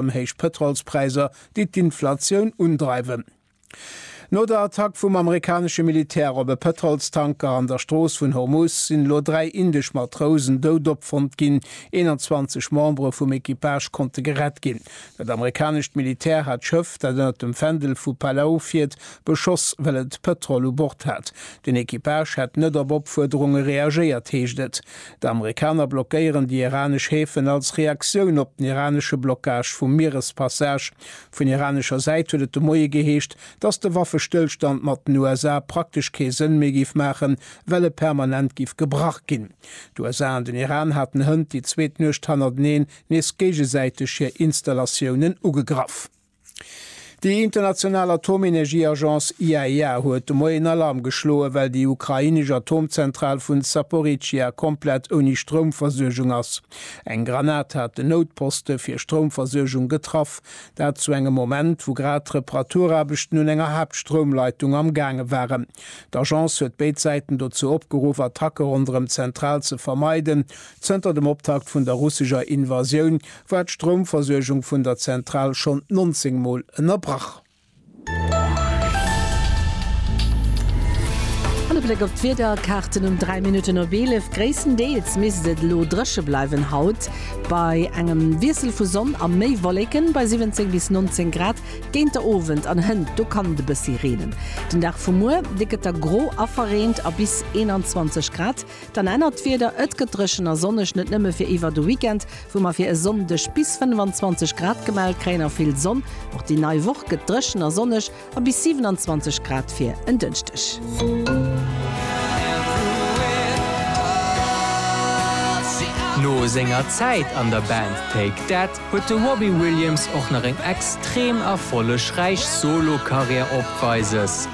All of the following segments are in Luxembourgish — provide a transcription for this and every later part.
ëm héich Pëtrolspräisser, déi d'Inflatioun undreiwen. No der Attack vum amerikanesche Militär op e Pëtrolstanker an der Strooss vun Hormuz sinn elo dräi indesch Matrousen dout opfonnt ginn. 21 Membere vum Equipage konnte gerett ginn. Dat amerikanescht Militär hat d'Schëff, dat ënner dem Fändel vu Palau fiert, beschoss, well et Pëtrol u Bord hat. Den Equipage hätt net op Opfuerderunge reagéiert, heescht et. D'Amerikaner blockéieren déi iranesch Häfen als Reaktioun op den iranesche Blockage vum Mierespassage. Vun iranescher Säit huet et de Moie geheescht, datt de Waffestëllstand mat den USA praktesch kee Sënn méi géif maachen, well e permanent géif gebrach ginn. D'USA an den Iran haten hënt déi zweet Nuecht hannerteneen nees géigesäiteg hir Installatiounen ugegraff. Déi international Atomenergieagence IAEA huet de Moien Alarm geschloen, well déi ukrainesch Atomzentral vun Zaporizhia komplett ouni Stroumversuergung ass. Eng Granat hat den Noutposte fir Stroumversuergung getraff. Dat zu engem Moment, wou grad d'Reparaturaarbechten un enger Haaptstroumleitung am gaange waren. D'Agence huet béid Säiten dozou opgeruff, Attacke ronderëm d'Zentral ze vermeiden, Zënter dem Optakt vun der russescher Invasioun war d'Stroumversuergung vun der Zentral schonn 19 Mol ënnerbrach. An e Bléck op d'Wiederkaarten um 3 Minutten op 11, Gréisstendeels misst et elo dréche bleiwen haut, bei engem Wiessel vu Sonn a méi Wolleken bei 17 bis 19 Grad. Géinter Owend an hënt do kann et e bëssi reenen. Den Dag vu muer, dee gëtt da gro a verreent a bis 21 Grad. Dann ännert d'Wieder, et gëtt dréchen a sonneg, net nëmme fir iwwer de Weekend, wou mer fir e Sonndeg bis 25 Grad gemellt kréien a vill Sonn. Och déi nei Woch gëtt dréchen a sonneg a bis 27 Grad fir en Dënschdeg. No senger Zäit an der Band Take That huet de Robbie Williams och nach eng extrem erfollegräich Solo-Karriär opweises.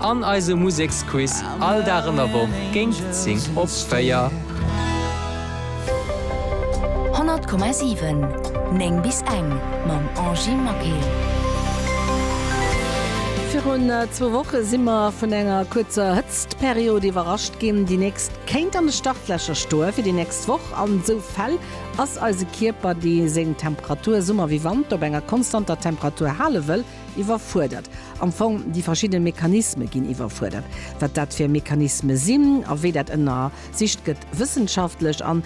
An eise Museksquiz all Dag an der Woch géint 10 op 4. 100,7 9 bis eng mam Angie Maquet. Virun zwou Woche si mer vun enger kuerzer Hëtztperiod iwwerrascht ginn, déi nächst kéint an de Startlächer stoe fir déi nächst Woch. An esou Fäll ass eise Kierper, dee seng Temperatur, Summer wéi Wanter, op enger konstanter Temperatur hale wëll, Iwwerfuerdert. Am Fong, déi verschidde Mechanisme ginn iwwerfuerdert. Wat dat fir Mechanisme sinn a wéi dat ënnersicht gëtt wëssenschaftlech an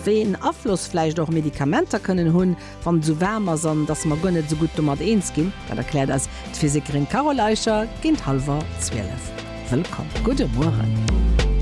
wéi een Afloss vläicht och Medikamenter kënnen hunn, wann et esou waarm ass an dass mer guer net esou gutt domat eens ginn, dat erkläert eis d'Physikerin Carole Eicher géint hallwer zwielef. Wëllkomm. Gudde Mueren.